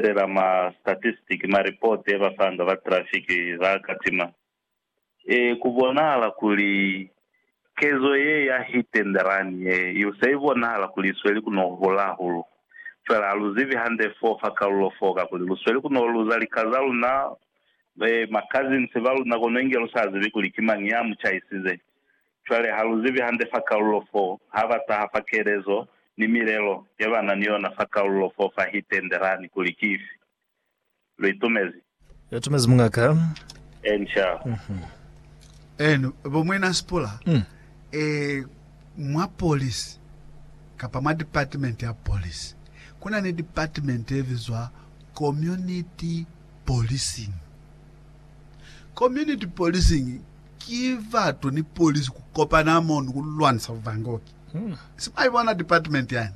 fela ma statistic, ma report e ba fanga ba traffic ba katima. E ku bonahala kuli kezo ye ya hit and run ye i se i bonahala kuli i sweli ku no hula hahulu. Fela ha lu zibi hande fo fa kalulo foo kakuli lu sweli ku no luza lika za luna, ma cousins ba luna kono inge lu sa zibi kuli ki mañi ya mu chaisize. Cwale ha lu zibi hande fa kalulo fo, ha ba taha fa kelezo ni milelo ye ba na ni yona fa kalulo fo fa hi tendelani kuli ki ifi. Lu itumezi? Lu itumezi muñaka. Eeni, sha. Eeni, bo Muina Sipula, e, mwa polisi, kapa mwa department ya polisi, ku na ni department ye bizwa community policing. Community policing Ki batu ni polisi ku kopana mo ni ku lwanisa buvangoki. Si mwa ibona department yani?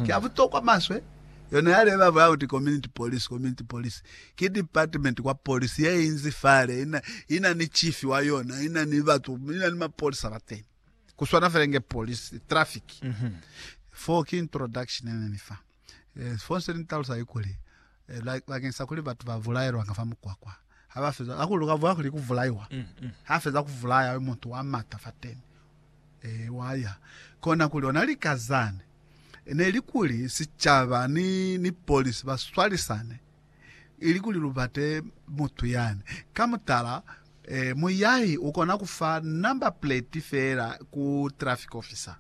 Ki ya butokwa maswe. Yona ya leba ba kuti community police, community police. Ki department kwa polisi ye inzi fale, ina, ina ni chief wa yona, ina ni batu, ina ni mapolisa bateni. Ku swana fela inge polisi, traffic. Foo ki introduction ye ne ni fa. Eh, sifoni se ni talusa ki kuli, eh, ba, bakeng sa kuli batu ba vulaelwa nga fa mukwakwa, ha ba feza, hakuli uka vula kuli ku vulaiwa, mm, mm. ha feza ku vulaya yo mutu wa mata fa teni, eh, wa ya. Kona kuli ona lika zane, ne li kuli sicaba ni, ni polisi ba swalisane, ili kuli lu bate mutu yani. Ka mutala, eh, muyahi ukona kufa number plate fela ku traffic officer.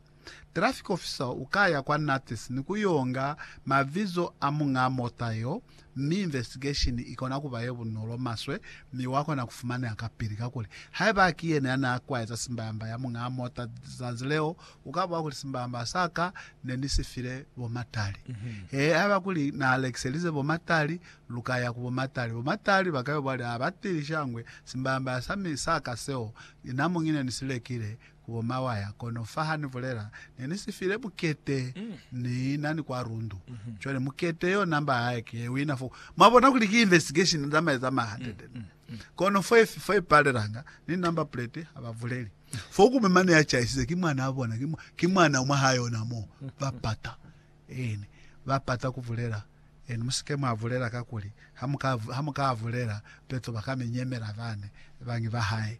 Traffic officer u ka ya kwa NATS ni ku yo nga mavizo a muñaa mota yeo, mi investigation i kona ku ba ye bunolo maswe mi wa kona ku fumaneha kapili. Kakuli, haiba ki yena ya n'a kwaeza simbamba ya muñaa mota zazi leo, u ka boha kuli simbamba sa ka ne ni si file bo Matali. He, haiba kuli n'a lekiselize bo Matali, lu ka ya ku bo Matali. Bo Matali ba ka yo bwali, Ha ba tili shangwe simbamba sa mi sa ka seo, na mu ngi ne ni si lekile Wo mawaya, kono fa ha ni bulela, ne ni si file mukete, ni na ni kwa rundu. Cwale mukete yo number hae ki ye wina fo. Mwa bona kuli ki investigation ni zamaye za ma hundred and one. Kono fo ye, fo ye palelanga, ni number plate ha ba buleli. Fo kume mane ya chaisize ki mwanaa bona, ki, ki mwana mwa ha yona mo. Ba pata. Eeni. Ba pata ku bulela. Eeni, mu si ke mwa bulela kakuli ha mu ka, ha mu ka bulela, peto ba ka mi nyemela bane, bañi ba hae.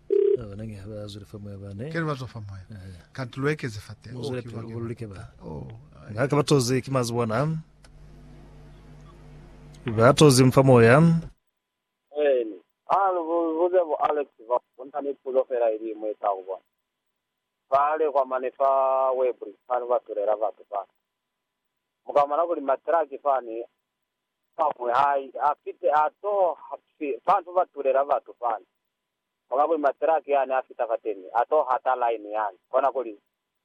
Keli bazwa fa moya. Kanti luekeze fa teng. Oh, kiba ke lulike ba. Oh. Nga ke batozi ki mazi bona. Batozi mfa moya. Eni. Ah, lubuze bo Alex ba. Kuna ni puzo fela ili imwe ka ku bona. Fale kwa mane fa Webri fani ba tulela batu fa. Mukamana kuli matraki fani pamwe hai afite ato fantu ba tulela batu fani. Kono kuli matiraki yani a fita fateni, a to hata line yani. Kona kuli,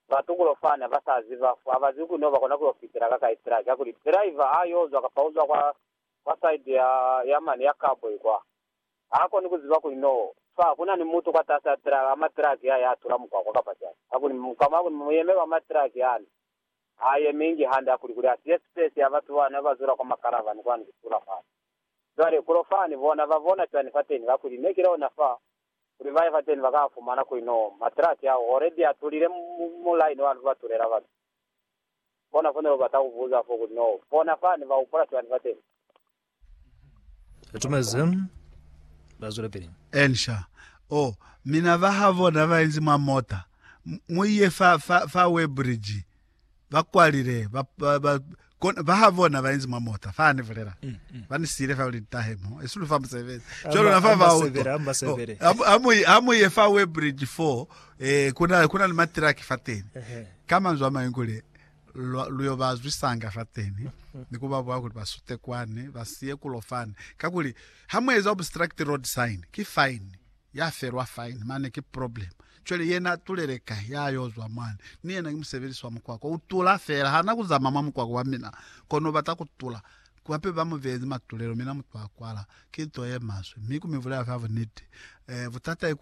ba tukulo fani haba sa ziba, ha ba zwi kuni ho ba kona ku yo fitela ka kai tiraki. Ha kuli, driver a yo zwa kapa uzwa kwa, kwa side ya, ya mane ya cowboy kwa. Ha koni ku ziba kuli no fa kuna ni mutu kwa tasi a tiraki, a matiraki ya, ya tula mukwakwa kapa cani. Ha kuli, mukama kuli, muyeme ba matiraki yani, ha yemi ingi hande. Ha kuli, kuli a siye space ya batu bani haba zula kwa ma caravan kwani ku tula fani. Cwale, kono fani, bona, ba bona cwani fateni, kakuli Ne ki lona fa, kuli baye fateni ba ka fumana kuli no matraki ao already a tulile mu, mu line wa ba tulela batu. Bona, fo ne lu bata ku buza fo, kuli no bona fani ba upola cwani fateni. Atumezi, ba zwela pili. Elisha, Oh, mina ba ha bona ba inzi mwa mota. Mu, mu iye fa, fa, fa Weybridge. ba kwalile ba ba, ba kona ba ha bona ba inzi mwa mota fa ni vulela mm, mm. ba ni sile fa uli tahe mo e sulu fa musebezi jalo na fa ba uto amu amu ye fa we bridge 4 eh kuna kuna ni matraki fa teni kama nzwa mayingule luyo ba zwisanga fa teni mm. ni kuba bwa kuti basute kwane basiye kulofana kakuli ha mu eza obstruct road sign ki fine Ya felwa fine mane ki problem. Cwale yena atulele kai ya yo zwa mwani? Ni yena ki musebelisi wa mukwako. U tula fela. Ha na ku zama mwa mukwako wa mina, kono u bata ku tula. Hape ba mu beezi matulelo, mina mutu a kwala. Ki nto ye maswe. Mi ku mi bulela fa buniti. Eh, butata ki kuli,